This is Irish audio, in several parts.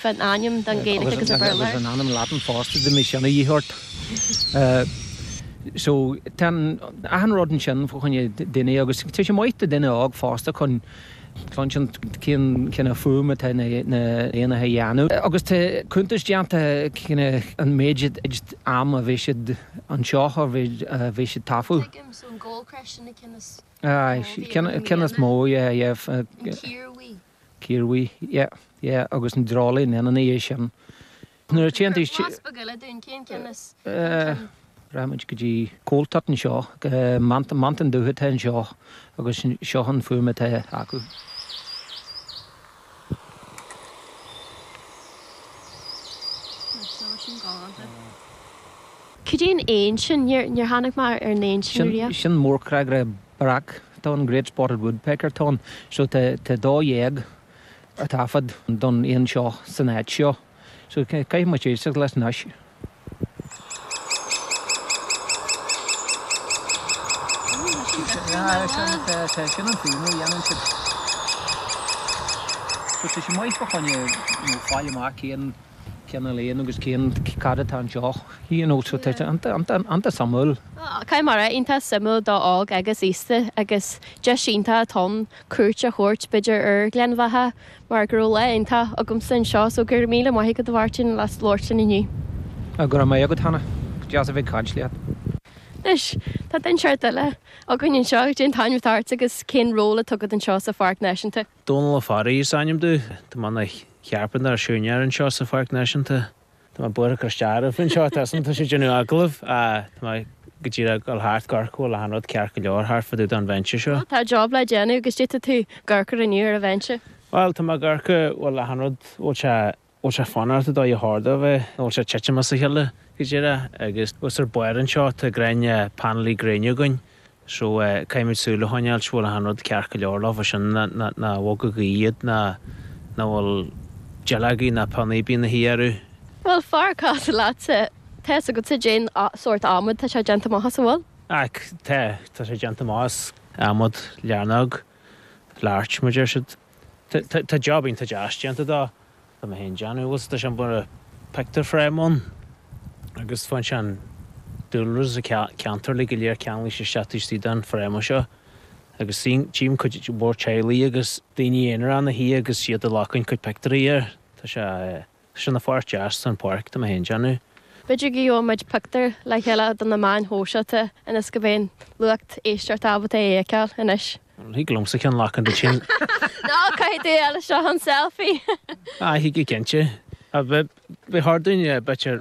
Bheadh ainm don Ghaeilge agus an Béarla air. Agus an ainm Laidin fosta dá mbeadh sin a dhíth ort. So, tá achan rud ansin fá choinne duine agus tá sé maith do dhuine óg fosta chun cluinstin cén cineál fuaim atá na héanacha a dhéanamh. Agus tá cuntas déanta cén méid am a bhí siad anseo a bhí siad tofu. Tuigim, so an goldcrest sin an cionn is mó. Aye, cionn is mó, yeah, yeah. An cíorbhuí. Cíorbhuí, Yeah, yeah agus an dreoilín ina dhiaidh sin. Nuair a Cur tiontaíos blas beag eile dúinn, cén cinn is cinn? Rachaidh muid go dtí coal tit anseo, meant, meantán dubh atá anseo agus seo an fuaim atá acu. Anois tá sin galánta. Cad é an éan sin? Níor tháinig mé ar an éan sin riamh. Sin mórchnagaire breac atá ann, Great Spotted Woodpecker atá ann. So tá tá dó dhéag ar taifead don éan seo san áit seo. So caithfidh muid éisteacht leis anois. Yeah, sin tá tá sin an fuaim a dhéanann siad. So tá sé maith fá choinne, you know, fáil amach cén cineál éan agus cén, cad atá anseo? You know so tá sé iontach suimiúil. Caithfidh mé a rá iontach suimiúil do óg agus aosta agus deis iontach atá ann cuairt a thabhairt b'fhéidir ar Ghleann Bheatha mar go raibh lá iontach agamsa anseo so go raibh míle maith agat a Mháirtín as labhairt linn inniu. Go raibh maith agat Hannah, deas a bheith ag caint leat. Anois, tá duine ceart eile againn anseo, cén t-ainm atá ort agus cén ról atá agat anseo sa Pháirc Náisiúnta? Dónal Ó Fearraigh is ainm domh. Tá mé ina chearpantóir nó siúinéir anseo sa Pháirc Náisiúnta. Tá mé buartha cur isteach oraibh anseo. Tá mé ag déanamh agallaimh. Tá mé go díreach ag dul thart ag amharc an bhfuil achan rud ceart go leor thart fá dtaobh den bhinse seo? Tá job le déanamh agus cad é atá tú ag amharc inniu ar an bhinse. Bhuel, tá mé ag amharc an bhfuil achan rud, bhfuil sé bhfuil sé fanacht an dóigh ar cheart dó a bheith nó bhfuil sé titim as a chéile go díreach agus thuas ar barr anseo. Tá grian, painéilí gréine againn so caithfimid súil a choinneáilt go bhfuil achan rud ceart go leor leo, bhfuil sin ná nár bhog an ghaoth iad ná ná bhfuil duilleogaí ná pionnaí bheith ina shuí orthu. Bhuel, fara casadh leatsa, tá fhios agatsa cén sórt adhmad tá sé déanta amach as, an bhfuil? Ach tá, tá sé déanta amach as adhmad learóg, larch mar a deir siad. Tá job iontach deas déanta de. Tá mé féin déanamh agus tá sé mar a pictiúr frame ann agus faigheann sé an dúlra sa cheantar uilig go léir ceangailte isteach taobh istigh den frame seo agus suím tchím cuid mhór teaghlaigh agus daoine aonair ina suí agus iad ag glacadh cuid pictiúirí air. Tá sé. Sin an pháirt dheas den pháirc domh féin a dhéanamh. B'fhéidir go bhfaighidh muid pictiúir le chéile do na meáin shóisialta ionas go mbeidh an lucht éisteachta ábalta é a fheiceáil anois. Thig liomsa ceann lachain duit sin. Ná caithfidh tú é le seo an selfie! Thig go cinnte. Beidh thar duine beirt ar.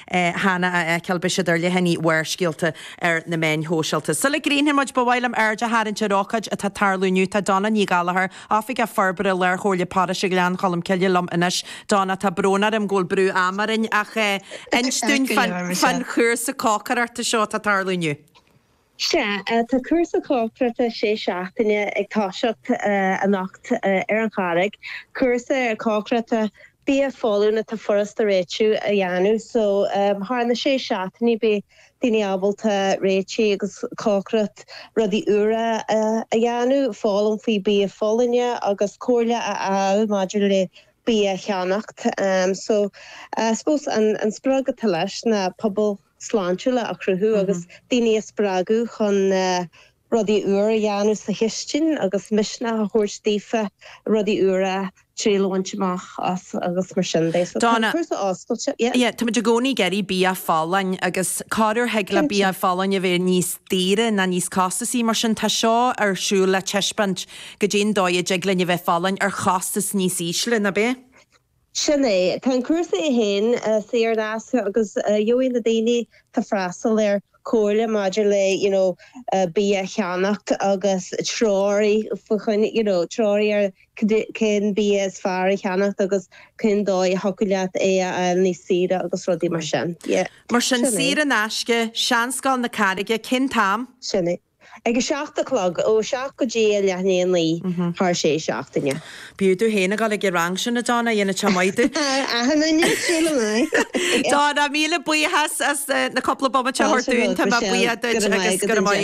cheana le feiceáil, bígí ar leathanaigh Bharrscéalta ar na meáin shóisialta. Sula gcríochnóidh muid, ba mhaith liom aird a tharraingt ar ócáid atá ag tarlú inniu. Tá Donna Ní Ghallachair, Oifigeach Forbartha Lárchomhairle Paróiste Ghleann Cholm Cille liom anois. Donna, tá brón orm go bhfuil brú ama orainn, ach inis dúinn fán chúrsa cócaireachta seo atá ag tarlú inniu. Sea, tá cúrsa cócaireachta sé seachtaine ag toiseacht anocht ar an Charraig, cúrsa cócaireachta bia folláin atá furasta a réiteach agus a dhéanamh, so thar na sé seachtainí beidh daoine ábalta réiteach agus cócaireacht rudaí úra a dhéanamh, foghlaim faoi bia folláine agus comhairle a fháil maidir le bia a cheannacht. So, I suppose an sprioc atá leis ná pobal. sláintiúla a chruthú agus daoine a spreagadh chun rudaí úra a dhéanamh sa chistin agus misneach a thabhairt daofa rudaí úra triail a bhaint amach as agus mar sin de. So tá an cúrsa oscailte. Yeah. Yeah, táimid i gcónaí ag iarraidh bia folláin agus corruair thig le bia folláin a bheith níos daoire ná níos costasaí, mar sin tá seo ar siúl le taispeáint goidé an dóigh a dtig linn a bheith folláin ar chostas níos ísle, nach bhfuil? Sin é. Tá an cúrsa é féin saor in aisce agus gheobhaidh na daoine atá ag freastal air comhairle maidir le you know bia a cheannacht agus treoir faoi choinne you know treoir ar cén bia is fearr a cheannacht agus cén dóigh a thiocfadh leat é a fháil níos saoire agus rudaí mar sin. Yeah. Mar sin, saor in aisce, Seanscoil na Carraige, Cén t-am? Sin é. Ag a seacht a chlog, ó a seacht go dtí a leath i ndiaidh a naoi, thar sé seachtaine. B'fhiú tú fhéin a dhul ag an rang sin, a Donna, dhéanfadh sé maith duit. Ahem, an ndéanfadh sílim, aye. Donna, míle buíochas as na cúpla bomaite a thabhairt dúinn, tá mé buíoch duit agus go raibh maith agat.